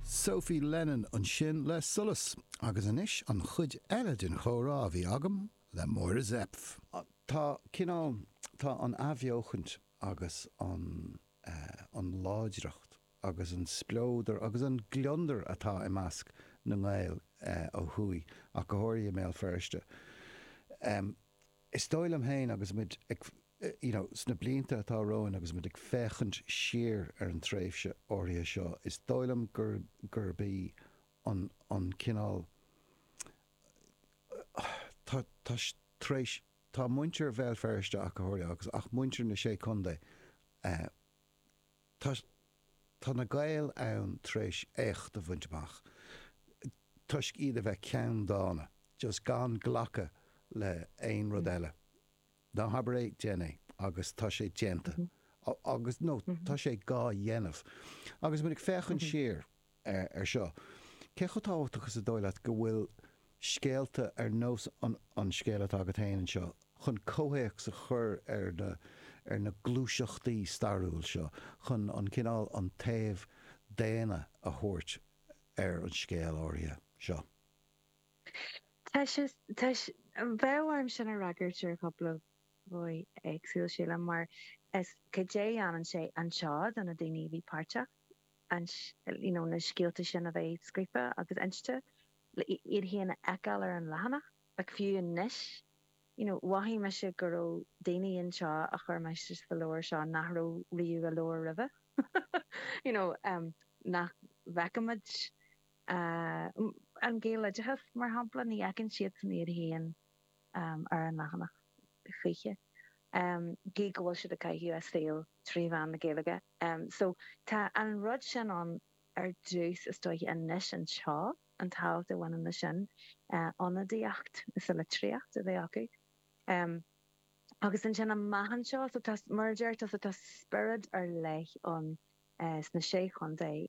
Sophie Lennon ansin le Solas agus anois an chuid eile den chomhrá a bhí agam le Máire Zepf. Tá cineál, tá an athbheochaint agus an eh, an láidreacht agus an spleodar agus an gliondar atá i measc na nGael eh, ó thuaidh go háirithe i mBéal Feirste em, is dóigh liom féin agus muid ag. you know, sna blianta atá romhainn agus muid ag féachaint siar ar an tréimhse áirithe seo, is dóigh liom gur, gurb í an, an cineál, tá, tá, tar éis, tá muintir Bhéal Feirste ach go háirithe agus, ach muintir na Sé Chontae, eh, tá, tá na Gaeil ann tar éis éacht a bhaint amach toisc iad a bheith ceanndána, just gan glacadh le aon rud eile. Ná habair é, déan é. Agus tá sé déanta. Agus, nó, tá sé dhá dhéanamh. Agus muid ag féachaint siar ar seo, cé chomh tábhachtach is dóigh leat go bhfuil scéalta ar nós an scéal atá agat féin anseo chun comhthéacs a chur ar na gluaiseachtaí stairiúil seo, chun an cineál, an taobh daonna a thabhairt ar an scéal áirithe seo? Tá sé, tá sé, bheadh orm sin a fhreagairt ar chúpla dhóigh éagsúil, sílim, mar is caidé a dhéanann sé anseo do na daoine a bhí páirteach an, you know, na scéalta sin a bheith scríofa agus inste, le iad féin a fheiceáil ar an leathanach. Like fiú anois, you know, mhothaigh mise go raibh daoine anseo a chuir mise sa leabhar seo nach raibh riamh i leabhar roimhe, you know, nach bhfeicimid. An Gaeloideachas, mar shampla, ní fheiceann siadsan iad féin ar an leathanach choíche, gidh go bhfuil siad ag caitheamh a saoil trí mheán na Gaeilge. So, tá an rud sin ann ar dtús, is dóiche,. Anois, anseo, an tábhacht a bhaineann leis sin, ionadaíocht sa litríocht a bheith acu. Agus ansin amach anseo, so tá, mar a deir tusa, tá spiorad ar leith ann sna Sé Chontae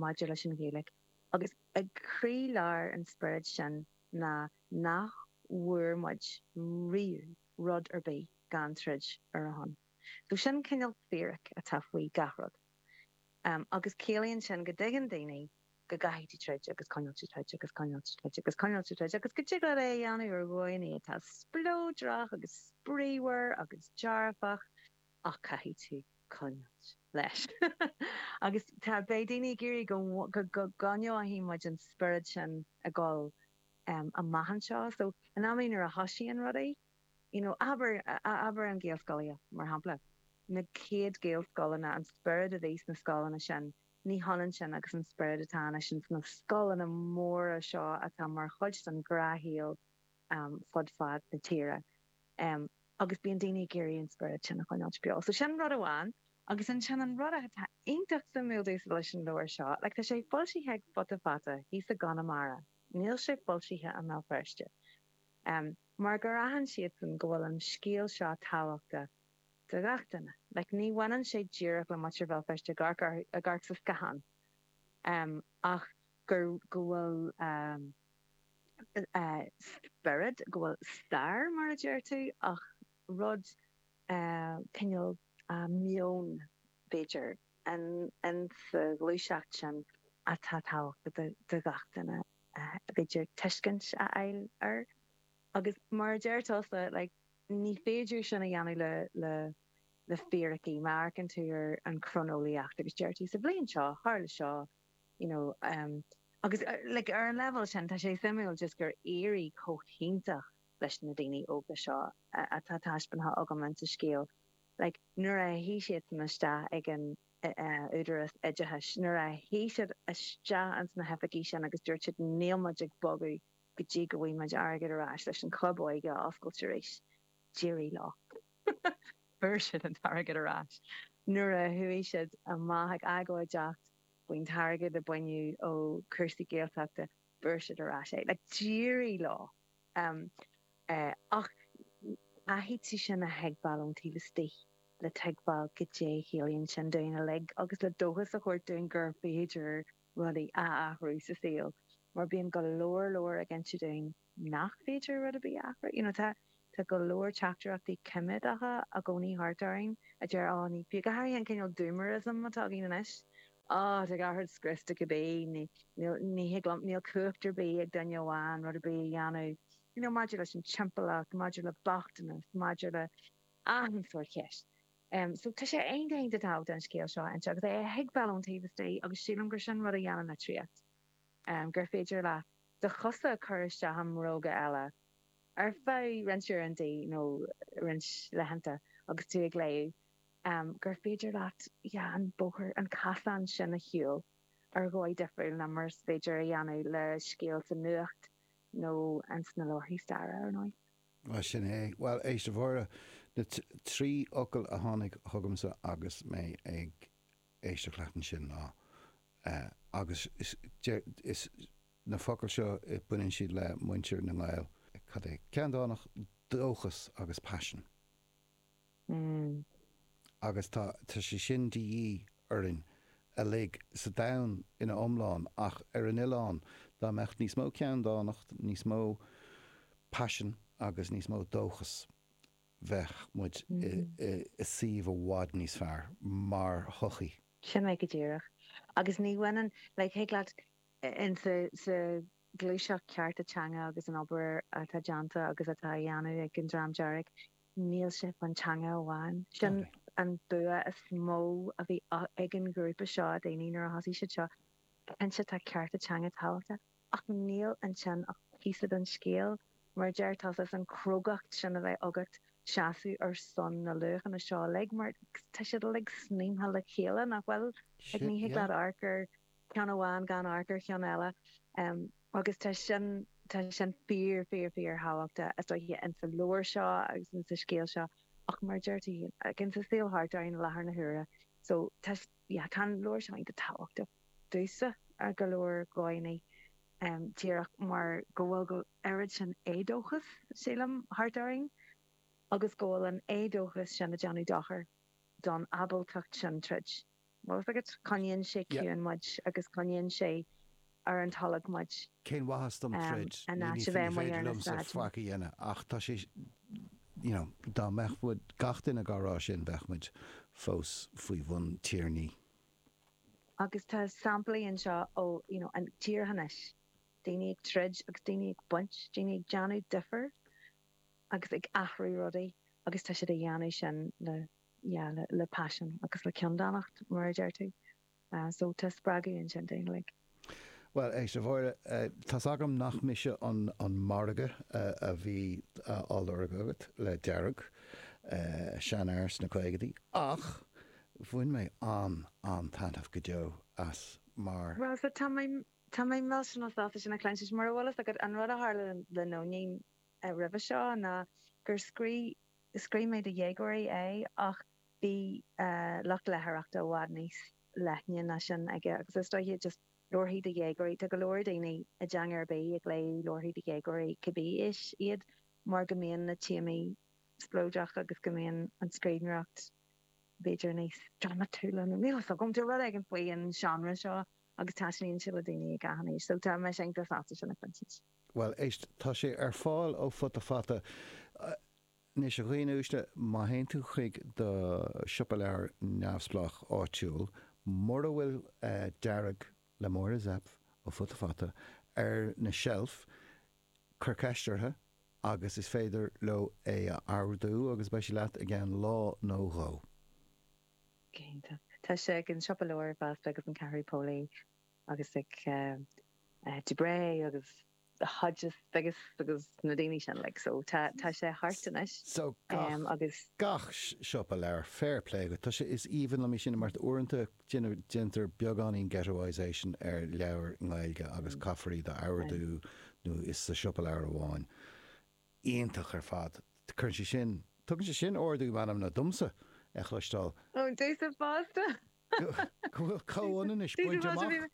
maidir leis an Ghaeilge agus ag croí lár an spioraid sin ná nach bhfuair muid riamh rud ar bith gan troid ar a shon. So sin cineál fíric atá faoi gach rud agus ciallaíonn sin go dtuigeann daoine go gcaithfidh tú troid agus coinneáil ag troid agus coinneáil ag troid agus coinneáil ag troid agus go dtig leat é a dhéanamh ar dhóigheannaí atá spleodrach agus spraoímhar agus dearfach ach caithfidh tú coinneáilt leis. Agus tá, beidh daoine ag iarraidh go, go gcoinneoidh muid an spiorad sin ag dul amach anseo. So, in amanna nuair a thosaíonn rudaí, you know, abair, abair an Gaelscolaíocht, mar shampla, na céad Gaelscoileanna, an spiorad a bhí sna scoileanna sin, ní hionann sin agus an spiorad atá anois sna scoileanna móra seo atá mar chuid den ghnáthshaol. fud fad na tíre agus bíonn daoine ag iarraidh an spiorad sin a choinneáilt beo. So sin an rud amháin. Agus ansin an rud atá iontach suimiúil domhsa leis an leabhar seo, like tá sé foilsithe ag Futa Fata thíos i gConamara, níl sé foilsithe i mBéal Feirste, mar gur aithin siadsan go bhfuil an scéal seo tábhachtach do gach duine. Like ní bhaineann sé díreach le muintir Bhéal Feirste ag amharc sa scáthán ach go bhfuil. spiorad, go bhfuil stair mar a deir tú ach rud cineál meon b'fhéidir in sa ghluaiseacht sin atá tábhachtach do gach duine b'fhéidir tuiscint a fháil air agus mar a deir tusa like ní féidir sin a dhéanamh le le le fíricí, má amharcann tú ar an chroineolaíocht agus deir tú sa bhliain seo tharla seo you know, um, agus like ar an leibhéal sin tá sé suimiúil just gur éirigh chomh hiontach leis na daoine óga seo atá taispeántha agam insa scéal, like nuair a shuigh siadsan isteach ag an údarás oideachais, nuair a shuigh siad isteach ins na hoifigí sin agus dúirt siad níl muid ag bogadh go dtí go bhfaighidh muid airgead ar ais leis an Chlub Óige a oscailt arís, D'éirigh leo fuair siad an t-airgead ar ais. Nuair a chuaigh siad amach ag agóideacht faoin t-airgead a baineadh ó chúrsaí Gaeltachta fuair siad ar ais é. Like d'éirigh leo ach caithfidh tú sin a thuigbheáil ón taobh istigh le tuigbheáil goidé a chiallaíonn sin dúinn uilig agus le dóchas a thabhairt dúinn gur féidir rudaí a athrú sa saol mar bíonn go leor glór ag inse dúinn nach féidir rud ar bith a athrú. You know, tá, tá go leor teachtaireachtaí coiméadacha i gcónaí thart orainn a deir oh ní fiú, go háirithe an cineál doomerism atá againn anois, oh tá gach rud scriosta cibé, ní, níl, ní thig liom, níl cumhacht ar bith ag duine amháin rud ar bith a dhéanamh, you know maidir leis an timpeallacht, maidir le bochtanas, maidir le achan sórt ceist. Em, so tá sé an-, an-, an-tábhachtach an scéal seo a inse agus é a thuigbheáil ón taobh istigh agus sílim gur sin rud a dhéanann litríocht. gur féidir leat do chosa a chur isteach i mbróga eile ar feadh roinnt uaireanta nó roinnt laethanta agus tú ag léamh, gur féidir leat an bóthar, an casán sin a shiúl ar dhóigh difriúil ná mar is féidir a dhéanamh le scéal sa nuacht nó sna leabharthaí staire, ar ndóigh. Bhuel, sin é. Bhuel, éist, a Mháire, na trí fhocal a tháinig chugamsa agus mé ag éisteacht leat ansin ná agus is na focail seo baineann siad le muintir na nGall cad é ceanndánacht dóchas agus paisean agus tá tá sé sin de dhíth orainn uilig sa domhan ina iomláine ach ar an oileán dá mbeadh níos mó ceanndánacht níos mó paisean agus níos mó dóchas bheadh muid i suíomh i bhfad níos fearr mar shochaí. Sin é go díreach. Agus ní bhaineann, like, thig leat in sa ghluaiseacht cearta teanga agus an obair atá déanta agus atá á dhéanamh ag an Dream Dearg, níl sé faoin teanga amháin. Sin an bua is mó a bhí ag an ghrúpa seo daoine nuair a thosaigh siad seo, cinnte tá cearta teanga tábhachtach, Ach níl ansin ach píosa den scéal. Mar a deir tusa, an chrógacht sin a bheith agat seasamh ar son na luachanna seo uilig, mar tá siad uilig sníomtha le chéile, nach bhfuil? Like, ní thig leat amharc ar cheann amháin gan amharc ar cheann eile. Agus tá sin, tá sin fíor, fíor, fíor thábhachtach, is dóiche, in sa leabhar seo agus in sa scéal seo ach mar a deir tú féin, like, in sa saol thart orainn i láthair na huaire. So, tá. Tá an leabhar seo iontach tábhachtach domhsa ar go leor dóigheanna, díreach mar go bhfuil go oiread sin éadóchas, sílim, thart orainn agus go bhfuil an éadóchas sin ag déanamh dochair don ábaltacht sin troid. Bhfuil fhios agat coinníonn sé ciúin muid agus coinníonn sé ar an tolg muid. Cén mhaitheas dom troid, in áit a bheith amuigh ar na sráideanna? Dá mbeadh gach duine dhá rá sin, bheadh muid fós faoi bhun tiarnaí. Agus tá samplaí anseo ó thíortha anois, daoine ag troid agus daoine ag baint, daoine ag déanamh difir agus ag athrú rudaí agus tá siad a dhéanamh sin le paisean agus le ceanndánacht, mar a deir tú. So tá spreagadh ansin do dhaoine like. Bhuel, éist, a Mháire, tá's agam nach mise an margadh a bhí á lorg agat le Dearg, seanfhear sna caogaidí, ach bhain mé an-an-taitneamh go deo as mar. Bhuel, so tá mé, tá mé millteanach sásta sin a chluint. Anois, mura bhfuil fhios agat, an rud a tharla le Nóinín roimhe seo ná gur scrí, scríobh mé do dhéagóirí é ach. Bhí lucht leitheoireachta i bhfad níos leithne ná sin aige agus is dóiche just leabharthaí do dhéagóirí. Tá go leor daoine i dteanga ar bith ag léamh leabharthaí do dhéagóirí cibé aois iad mar go mbíonn na téamaí spleodrach agus go mbíonn an scríbhneoireacht b'fhéidir níos dramatúla nó níl fhios agam. Tá rud éigin faoin seánra seo agus taitníonn sé le daoine ag achan aois. So tá mise iontach sásta sin a chluinstin. Bhuel éist, tá sé ar fáil ó Futa Fata. Anois, a dhaoine uaisle, má théann tú chuig do siopa leabhar neamhspleách áitiúil, mura bhfuil Dearg le Máire Zepf ó Futa Fata ar an seilf, cuir ceist orthu agus is féidir leo é a ordú agus beidh sé leat i gceann lá nó dhó. Cinnte. Tá sé ag an siopa leabhar fosta agus an Ceathrú Póilí agus ag Dubray agus. Hodges agus agus na daoine sin like so tá tá sé thart anois so gach agus gach siopa leabhar fair play agat tá sé is aoibhinn liom é sin mar uaireanta déanamh déantar beagáinín ghettoisation ar leabhair Ghaeilge agus caithfear iad a ordú nó is sa siopa leabhar amháin iontach ar fad cuireann sé sin tugann sé sin ardú meanmna domsa a chloisteáil. Ó, just fosta Go bhfuil comhionannas bainte amach.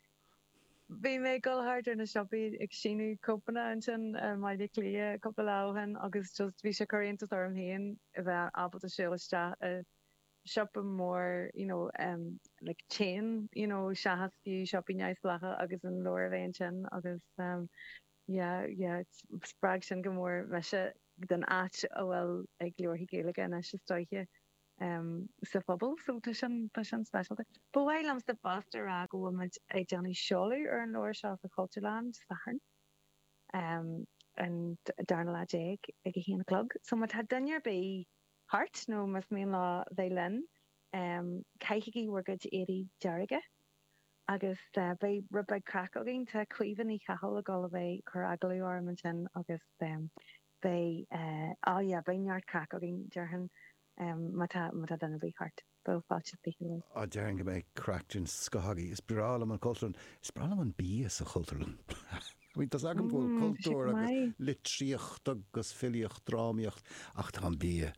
Bhí mé ag dul thart ar na siopaí ag síniú cóipeanna ansin i mBaile Cliath cúpla lá ó shin agus just bhí sé ag cur iontas orm féin a bheith ábalta siúl isteach i siopa mór you know em like chain you know seachas fiú siopaí neamhspleácha agus an leabhar a bheith ansin agus em yeah yeah spreag sin go mór mise an áit a atá ag leabharthaí Gaeilge anois istigh. sa phobal. So tá sin tá sin speisialta. Ba mhaith liomsa fosta a rá go bhfuil muid ag déanamh seoladh ar an leabhar seo sa Chultúrlann Dé Sathairn um an darna lá déag ag a haon a chlog. So má tá duine ar bith thart nó más mian leo bheith linn um caithigí bhur gcuid éadaí dearga agus beidh rud beag craic againn. Tá Caoimhe Ní Chathail ag dul a bheith cur agallamh orm ansin agus um. beidh a beidh neart craic againn, déarfainn, má tá duine ar bith thart. Beidh fáilte is fiche roimh. Á, déarfainn go mbeidh craic den scoth againn. Is breá liom an Chultúrlann. Is breá liom an bia sa Chultúrlann. I mean, tá a fhios agam go bhfuil cultúr agus litríocht agus filíocht, drámaíocht, ach tá an bia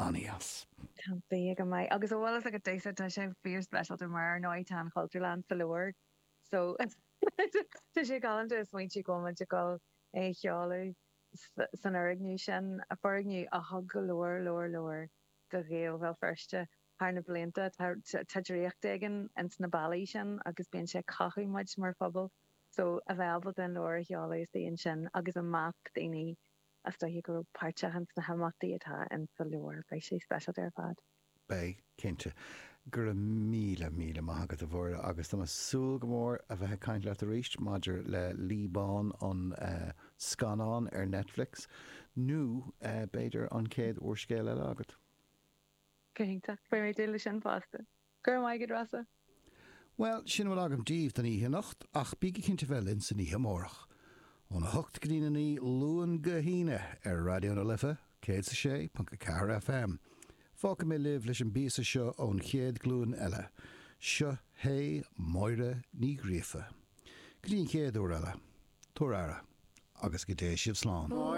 an-deas. Tá an bia go maith. Agus a bhfuil fhios agat, Dave, tá sé fíor-speisialta mar ar ndóigh tá an Chultúrlann sa leabhar so tá sé galánta a smaointiú go bhfuil muid ag dul é a sheoladh. san fhoirgneamh sin, foirgneamh a thug go leor, leor, leor do Ghaeil Bhéal Feirste thar na blianta. Tá draíocht éigin ins na ballaí sin agus bíonn sé ag cothú muid mar phobal. So, a bheith ábalta an leabhar a sheoladh istigh ansin agus i measc daoine is dóiche a raibh páirt acu ins na himeachtaí atá ins sa leabhar, beidh sé speisialta ar fad. Beidh, cinnte. Go raibh míle, míle maith agat, a Mháire, agus tá mé súil go mór a bheith ag caint leat arís maidir le Lí Bán, an scannán ar Netflix, nó b'fhéidir an chéad úrscéal eile agat. Cinnte. Beidh mé ag dúil le sin fosta. Go raibh maith agat, Rossa. Bhuel, sin a bhfuil agam díbh don oíche anocht, ach bígí cinnte bheith linn san oíche amárach, óna hocht go dtí'n a naoi, Luan go hAoine, ar Raidió na Life, céad is a sé, ponc a ceathair FM. Fágfaidh mé libh leis an bpíosa seo ón chéad ghlúin eile. Seo hé Máire Ní Ghríofa. Go dtí an chéad uair eile, tabhair aire, agus go dté sibh slán.